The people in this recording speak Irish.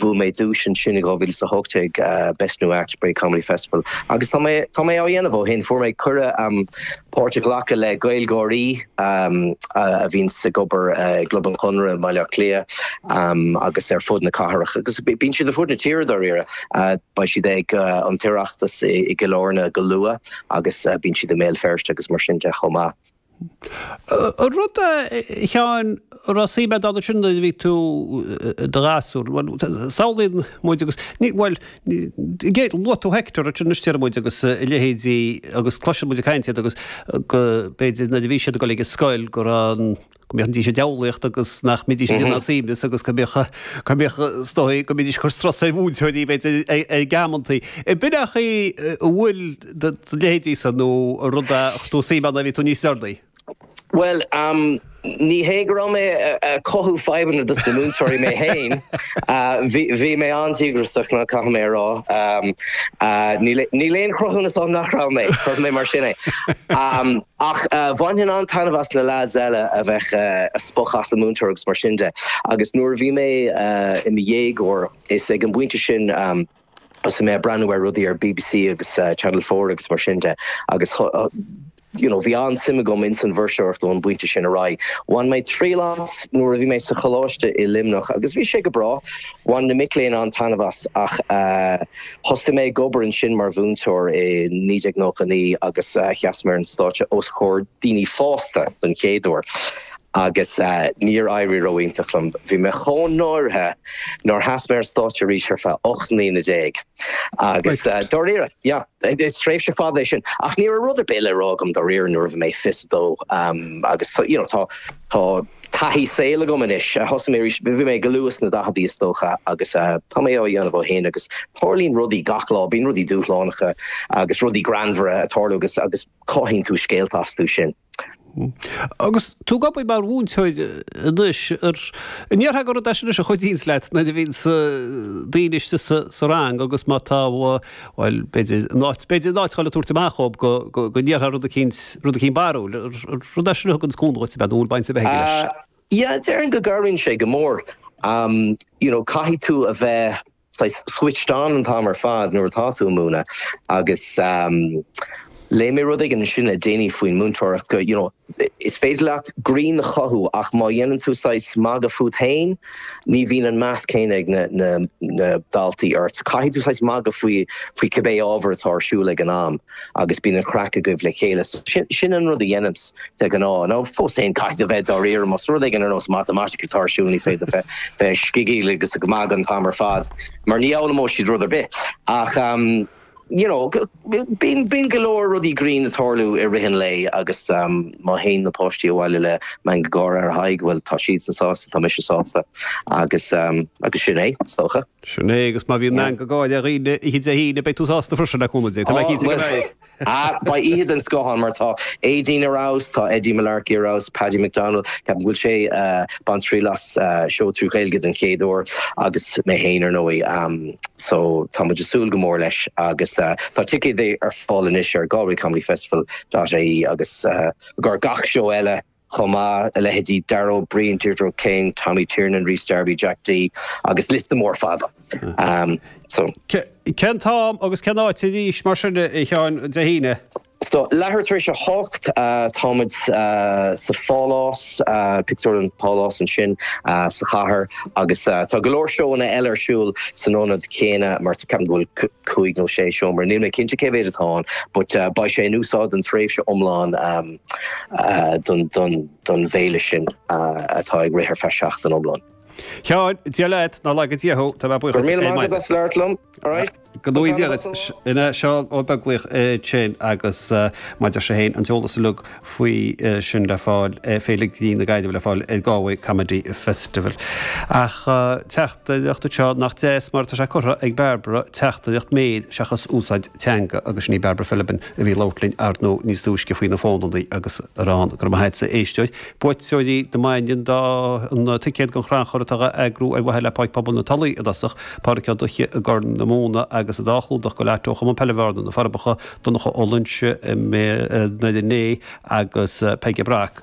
Bhuaigh mé duais ansin i 2018, Best New Act, Bray Comedy Festival, agus tá tá mé á dhéanamh ó shin. Fuair mé cuireadh um páirt a ghlacadh le Gaeilgeoirí um a bhíonn ag obair i gClub an Chonradh i mBaile Átha Cliath um agus ar fud na cathrach, agus bíonn siad ar fud na tíre dáiríre. Uh beidh siad ag uh an tOireachtas i i gCill Airne go luath agus uh bíonn siad i mBéal Feirste agus mar sin de chomh maith. An rud é, a Sheáin, a raibh suim agat ann sin nuair a bhí tú i do ghasúr. Bhuel, samhlaíonn muid agus ní, bhuel, ní, luaigh tú Hector ansin, nó Steip muid agus a leithéidí agus cloiseann muid ag caint iad agus go, b'fhéidir, nuair a bhí siad ag dul ag an scoil go raibh an, go mbídís ag diabhlaíocht agus nach mbídís ag déanamh suaimhneas agus go mbíodh, go mbíodh, is dóigh go mbídís ag cur strus ar mhúinteoirí, b'fhéidir, ag amantaí. An mbíonn a chaoi a bhfuil. do leithéidí sin nó rud a raibh suim ann nuair a bhí tú níos óige? Bhuel, ní hé go raibh mé ag cothú fadhbanna dos na múinteoirí mé fhéin. Bhí mé an-díograiseach caithfidh mé a rá. Níl aon chruthúnas ann nach raibh mé, cuirfidh mé mar sin é. Ach bhainfinn an-taitneamh as na leaids eile a bheith ag spochadh as an múinteoir agus mar sin de. Agus nuair a bhí mé i mo dhéagóir is ag an bpointe sin thosaigh mé ag breathnú ar rudaí ar bbc agus Channel Four agus mar sin de agus you know, bhí an-suim agam ins an bhfuirseoireacht ón bpointe sin ar aghaidh. Bhain mé triail as nuair a bhí mé sa choláiste i Luimneach agus bhí sé go breá, bhain na mic léinn an-taitneamh as ach thosaigh mé ag obair ansin mar mhúinteoir i 1999 agus sheas mé ar an stáitse os comhair daoine fásta don chéad uair. Agus níor éirigh ró-iontach liom. Bhí mé chomh náirithe nár sheas mé ar stáitse arís ar feadh ocht mbliana déag. Agus dáiríre, yeah, is tréimhse fada é sin. Ach ní raibh rud ar bith le rá agam dáiríre nuair a bhí mé fiche's a dó. Agus you know, tá, tá taithí saoil agam anois. Thosaigh mé arís, bhí mé go luath sna daicheadaí is dócha agus tá mé á dhéanamh ó shin agus tarlaíonn rudaí gach lá, bíonn rudaí dúshlánacha agus rudaí greannmhara ag tarlú agus, agus cothaíonn tú scéalta astu sin. Agus tú ag obair mar mhúinteoir anois, an ndéarfá gur rud é sin anois a chuidíonns leat nuair a bhíonns daoine istigh sa rang agus má tá, bhuel, b'fhéidir, in áit, b'fhéidir in áit dhul ag tabhairt amach dhóib go, go, go ndéarfá rud eicínt, rud eicínt barrúil, an rud é sin a thuganns cúnamh dhuit, an ea, nó an bhfuil baint ar bith aige leis? Yeah, déarfainn go gcabhraíonn sé go mór. You know, caithfidh tú a bheith saghas switched on an t-am ar fad nuair atá tú ag múineadh agus léigh mé rud éigin ansin le déanaí faoin múinteoireacht go you know is féidir leat greann a chothú ach má dhéanann tú saghas magadh fút féin ní bhíonn an meas céanna ag na daltaí ort, caithfidh tú saghas magadh faoi cibé ábhar atá ar siúl ag an am. agus bíonn an chraic agaibh le chéile. So, sin an rud a dhéanaimse de ghnáth. Ach fós féin caithfidh tú bheith dáiríre, más rud éigin ar nós Matamaitice atá ar siúl ní féidir bheith ag scigil agus ag magadh an t-am ar fad, mar ní fhoghlaimeoidh siad rud ar bith. Ach, you know, bíonn go leor rudaí grinn ag tarlú i rith an lae agus má théann na páistí abhaile le meangadh gáire ar a n-aghaidh, bhuel, tá siadsan sásta, tá mise sásta agus, agus sin é, is dócha. Sin é, agus má bhíonn meangadh gáire orthu oíche Dé hAoine, beidh tú sásta freisin le cúnamh Dé, tá mé cinnte go mbeidh. Ah, beidh oíche den scoth ann, mar tá Aideen ar fheabhas, tá Eddie Mullarkey ar fheabhas, Paddy McDonnell, ceapaim go bhfuil sé ag baint triail as seó trí Ghaeilge den chéad uair, agus mé féin ar ndóigh, so tá muid ag súil go mór leis agus tá ticéid ar fáil anois ar galwaycomedyfestival.ie agus i gcomhair gach seó eile. chomh maith, a leithéidí Dara Ó Briain, Deirdre O'Kane, Tommy Tiernan, Rhys Darby, Jack Dee agus liosta mór fada. Cén t-am agus cén áit arís, mar sin, a Sheáin, Dé hAoine? So, leathuair tar éis a hocht, táimid sa Phálás, Pictiúrlann Pálás ansin sa chathair agus tá go leor seóanna eile ar siúl san ionad céanna mar ceapaim go bhfuil cúig nó sé seomra. Níl mé cinnte cé mhéad atá ann, but beidh sé in úsáid don tréimhse iomlán don bhféile sin atá ag rith ar feadh seachtain iomlán. A Sheáin, Dia leat, nár laga Dia thú, tá mé buíoch duit. Go raibh míle maith agat as labhairt liom, alright? Go raibh maith agat. Sin é, Seán Ó Beaglaoich é sin agus mar a deir sé féin, an t-eolas uilig faoi sin le fáil, Féile Grinn na Gaillimhe le fáil ar Galway Comedy Festival. Ach teacht. teachtaireacht seo nach deas mar tá sé curtha ag Barbara teachtaireacht méir seachas úsáid teanga agus sin í Barbara Philibin a bhí ag labhairt linn ar ndóigh níos túisce faoi na fónannaí agus araile go raibh maith a'dsa a éisteoir buaiteoirí na maidine do na ticéid don chrannchur atá á eagrú ar mhaithe le Páirc Pobail na Tulaí i dtosach Pádraic Ó Duithche i gCorn na Móna agus an dá chlúdach go leor ó Chumann Peile Bhearna, Na Forbacha, Donncha Ó Loinsigh i nDoire Né agus Peige Breathnach.